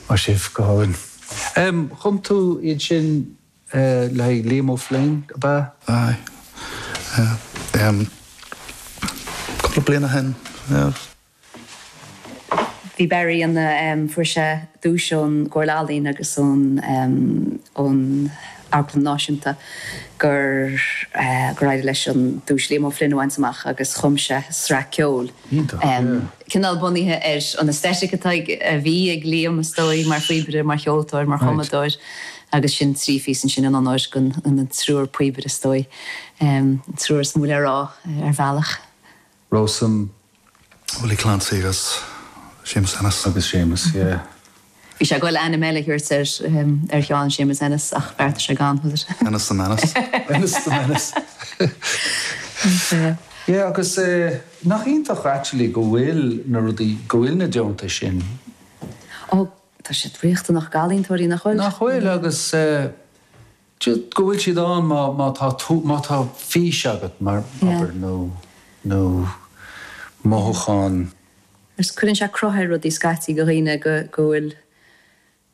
Maith sibh, go hálainn. Chum tú iad sin le haghaidh Liam O'Flynn, ab ea? Aye. Cúpla bliain ó shin. Bhí Barry ina, fuair sé duais ón gComhairle Ealaíon agus ón Amharclann Náisiúnta gur, gur éirigh leis an duais Liam O'Flynn a bhaint amach agus chum sé sraith ceoil. Iontach, yeah. Cineál bunaithe ar an aesthetic atá ag, a bhí ag Liam is dóigh, mar phíobaire, mar cheoltóir, mar chumadóir agus sin trí phíosa ansin in onóir den, an triúr píobaire is dóigh, an triúr is mó le rá ar bhealach. Rowsome, Willie Clancy agus Séamus Ennis. Agus Séamus, yeah. Bhí sé ag goil ainm eile a thabhairt ar Sheán, Séamus Ennis, ach bheartaigh sé gan, was it? Ennis the Menace. Ennis the Menace. Yeah, agus nach iontach actually go bhfuil na rudaí, go bhfuil na deontais sin. Oh, tá siad riachtanach go ealaíontóirí, nach bhfuil? Nach bhfuil, agus Just go bhfuil siad ann má tá tú, má tá fís agat abair nó, nó mothúchán. Just cuireann sé cruth ar rudaí scaití go dhaoine go, go bhfuil,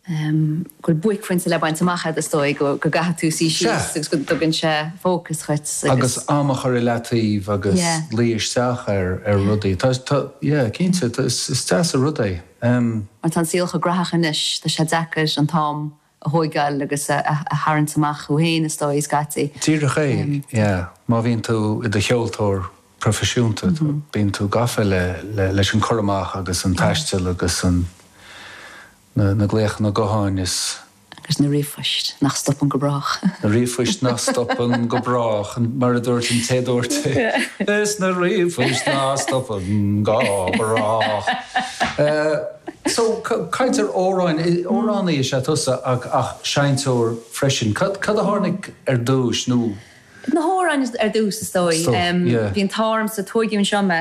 ehm, go bhfuil buaicphointe le baint amach agat is dóigh, go, go gcaithfidh tú suí síos agus go dtugann sé fócas dhuit agus. Agus am a chur i leataobh agus luí isteach ar, ar rudaí. Tá, tá, yeah, cinnte, tá, is, is deas an rud é. Ehm. Mar tá an saol chomh gnaitheach anois, tá sé deacair an t-am a thóigeáil agus a tharraingt amach thú fhéin, is dóigh, scaití. Díreach é, yeah. Má bhíonn tú i do cheoltóir proifisiúnta, bíonn tú gafa leis an cur amach agus an taisteal agus na glaochanna gutháin is. Agus na ríomhphoist nach stopann go brách. Na ríomhphoist nach stopann go brách, mar a dúirt an té a dúirt é, is na ríomhphoist nach stopann go brách. So, cainteoir, amhrán, amhránaí is ea tusa ach seinnteoir freisin. Cad a tháinig ar dtús nó? Na hamhráin ar dtús is dóigh. Bhí an t-ádh ormsa, tóigeadh anseo mé.